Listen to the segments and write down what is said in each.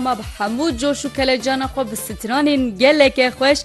Ma bi hemû coş û kelecana xwe bi stranên geleke xweş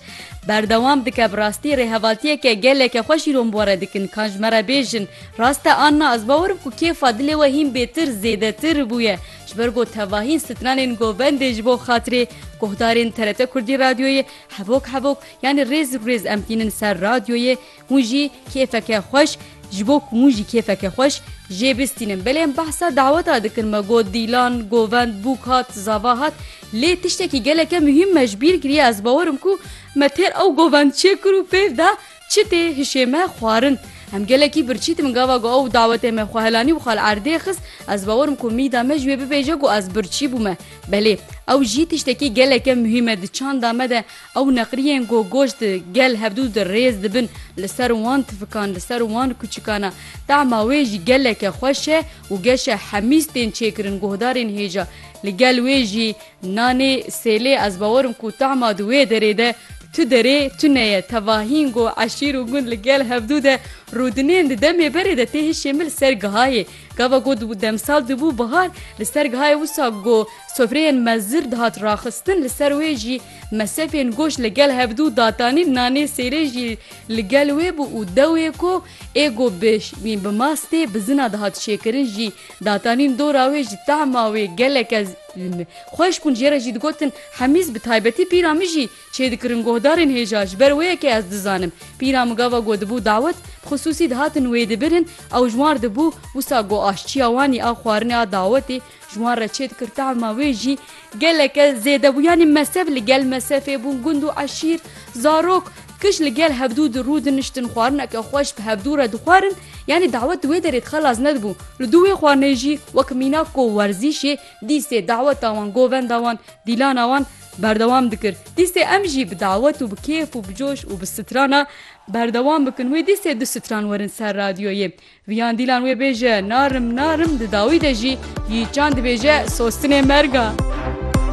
berdewam dike. Bi rastî rêhevaltiyeke geleke xweş îro min bi we re dikin. Kan ji me re bêjin rast e an na ez bawer im ku kêfa dilê we hîn bêtir zêdetir bûye ji ber ku tevahîn stranên govendê ji bo xatirê guhdarên TRT Kurdî Radyoyê hevok hevok yanî rêz rû rêz em tînin ser radyoyê Hûn jî kêfeke xweş Ji bo ku hûn jî kêfeke xweş jê bistînin. Belê em behsa daweta dikin me got Dîlan, Govend, Bûk hat, Zava hat. Lê tiştekî geleke muhîm me ji bîr kiriye ez bawer im ku me têr ew Govend çê kir û fêr da çi tê hişê me xwarin. Em gelekî birçî dibin gava ku ew dawetê me xwe helanî û xwe li erdê xist. Ez bawer im ku mîda me ji wê bibêje ku ez birçî bûme. Belê ew jî tiştekî geleke muhîm e di çanda me de. Ew neqriyên ku goş di gel hevdu de rêz dibin li ser wan tifikan, li ser wan kuçikan e. Tahma wê jî geleke xweş e û geşe hemîz tên çêkirin guhdarên hêja. Li gel wê jî nanê, sêlê ez bawer im ku tahma di wê derê de tu derê tune ye. Tevahîn ku eşîr û gund li gel hevdu de rûdinên di demê berê de tê hişê min li ser gihayê. Gava ku demsal dibû bihar li ser gihayê wisa ku sofreyên mezir dihat raxistin li ser wê jî Mesefên goş li gel hevdu datanî nanê sêrê jî li gel wê bû û dewê ku êgo bi bi mastê bi zina dihat şêkirin jî datanîn dora wê ji tahma wê geleke xweş bûn jê re jî digotin Hemîz bi taybetî pîra min jî çêdikirin guhdarên hêja ji ber wê ye ke ez dizanim pîra min gava ku dibû dawet bi xisûsî dihatin wêdibirin ew ji wan re dibû wisa ku aşçiya wanî a xwarinê a dawetê Ji wan re çêdikir tahma wê jî geleke zêde bû. Yanî mesef li gel mesefê bûn, gund û eşîr, zarok, kij li gel hevdû di rû diniştin, xwarineke xweş bi hevdû re dixwarin. Yanî dawet di wê derê dixe laz nedibû. Li dû wê xwarinê jî wek mînak ku werzîşê dîstê daweta wan, govenda wan, dîlana wan berdewam dikir. Dîstê em jî bi dawet û bi kêf û bi coş û bi strana berdewam bikin. Wê dîstê du stran werin ser radyoyê. Viyan dîlan wê bêje narim narim di dawî de jî gîçan dibêje sostinê merg a.